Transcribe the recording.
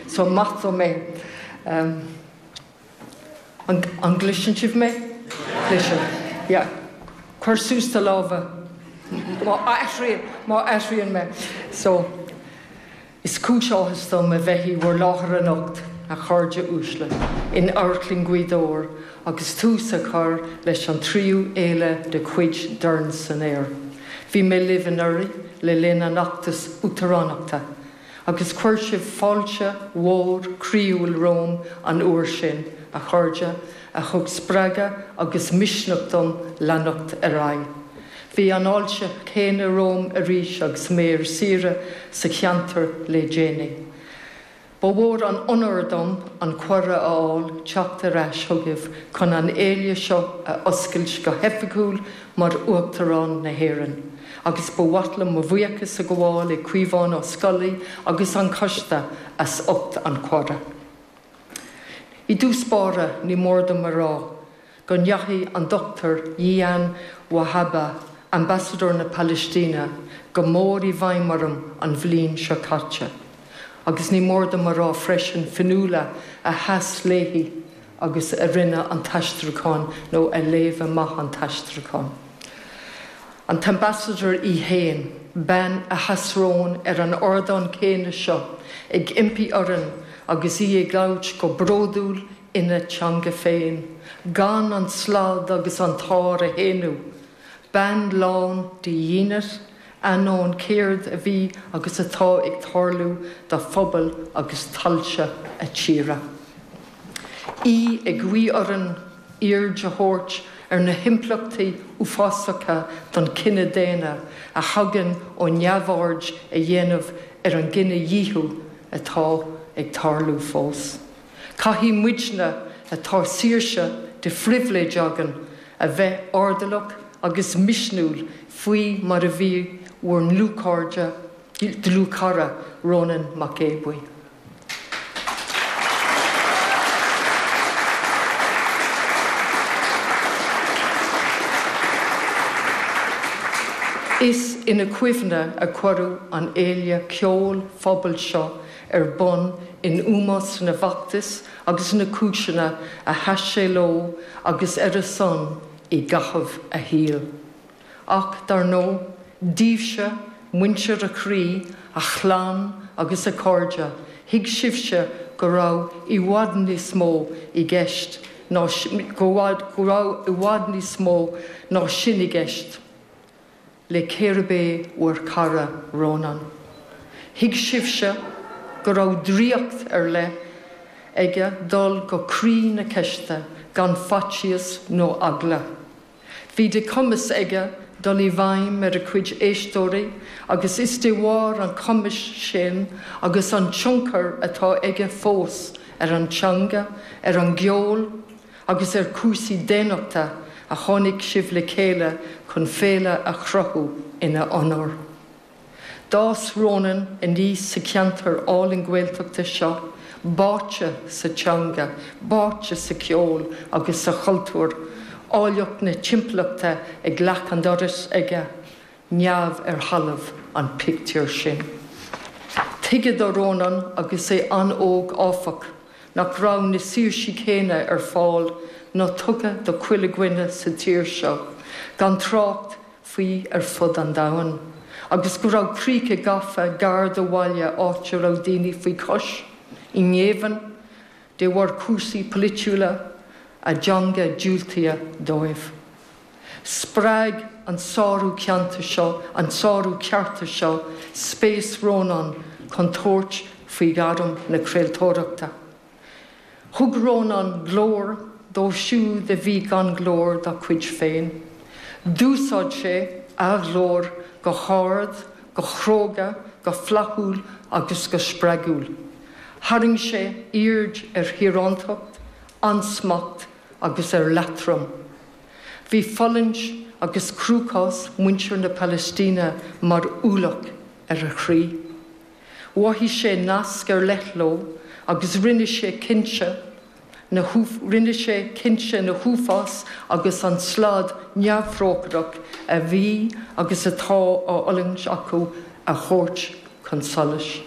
So maith dom é. An, an gcloiseann sibh mé? Yeah. Cuir suas do lámha má airíonn, má airíonn mé. So, is cúis áthais dom a bheith i bhur láthair anocht, a chairde uaisle, in Amharclann Ghaoth Dobhair agus tús a chur leis an tríú fhéile de chuid Dorn san Aer. Bhí mé libh anuraidh le linn an fheachtais uachtaránachta. Agus chuir sibh fáilte mhór chroíúil romham an uair sin, a chairde, a thug spreagadh agus misneach dom leanacht ar aghaidh. Bhí an fháilte chéanna romham arís agus mé ar saoire sa cheantar le déanaí. Ba mhór an onóir dom an cuireadh a fháil teacht ar ais chugaibh chun an fhéile seo a oscailt go hoifigiúil Mar Uachtarán na hÉireann, agus ba mhaith liom mo bhuíochas a ghabháil le Caomhán Ó Scolaí agus an Coiste as ucht an cuireadh. I dtús báire, ní mór dom a rá go ndeachaigh an Dr Jilan Wahba, Ambasadóir na Palaistíne, go mór i bhfeidhm orm an bhliain seo caite, agus ní mór dom a rá freisin Fionnuala a sheas léi agus a rinne an t-aistriúchán nó a léigh amach an t-aistriúchán, an tAmbassador í fhéin, bean a sheas romhainn ar an ardán céanna seo ag impí orainn agus í ag labhairt go bródúil ina teanga féin, gan an slad agus an t-ár a shéanadh, bean lán de dhínit, Ainneoin céard a bhí agus atá ag tarlú do phobal agus tailte a tíre, í ag guí orainn aird a thabhairt ar na himpleachtaí uafásacha don chine daonna a thagann ó neamhaird a dhéanamh ar an gcinedhíothú atá ag tarlú fós. Caithfidh muidne a bhfuil saoirse de phribhléid againn a bheith airdeallach agus misniúil faoi mar a bhí bhur ndlúthchairde, dlúthchara Rónán Mac Aodha Bhuí. Is ina chuimhne a cuireadh an fhéile ceoil phobail seo ar bun in ómós na bhfeachtas agus na cúiseanna a sheas sé leo agus ar a son i gcaitheamh a shaoil. Ach, dar ndóigh, daoibhse, muintir a chroí, a chlann agus a chairde, thuig sibhse go raibh i bhfad níos mó i gceist, go raibh i bhfad níos mó ná sin i gceist. le cérbh é bhur cara Rónán. Thuig sibhse go raibh draíocht ar leith aige dul go croí na ceiste gan faitíos nó eagla. Bhí de chumas aige dul i bhfeidhm ar a chuid éisteoirí agus is de bharr an chumais sin agus an tionchair atá aige fós ar an teanga, ar an gceol, agus ar cúrsaí daonnachta a tháinig sibh le chéile chun féile a chruthú ina onóir. D'fhás Rónán aníos sa cheantar álainn Gaeltachta seo, báite sa teanga, báite sa cheol agus sa chultúr, áilleacht na timpeallachta ag leac an dorais aige, neamh ar thalamh an pictiúr sin. Tuigeadh do Rónán agus é an-óg áfach, nach raibh na saoirsí céanna ar fáil nó tugtha do chuile dhuine sa tír seo, gan trácht faoi ar fud an domhain, agus go raibh críocha gafa gar do bhaile áit a raibh daoine faoi chois, i ngéibheann, de bharr cúrsaí polaitiúla, a dteanga diúltaithe dóibh. Spreag an sárú ceanta seo, an sárú cearta seo, spéis Rónán chun tabhairt faoi ghairm na craoltóireachta. Thug Rónán glór dóibh siúd a bhí gan glór dá gcuid féin. D'úsáid sé a ghlór go hard, go cróga, go flaithiúil agus go spreagúil. Tharraing sé aird ar thíoránacht, ansmacht agus ar leatrom. Bhí fulaingt agus cruachás muintir na Palaistíne mar ualach ar a chroí. Mhothaigh sé nasc ar leith leo agus rinne sé cinnte na rinne sé cinnte na huafáis agus an slad neamhthrócaireach a bhí agus atá á fhulaingt acu a thabhairt chun solais.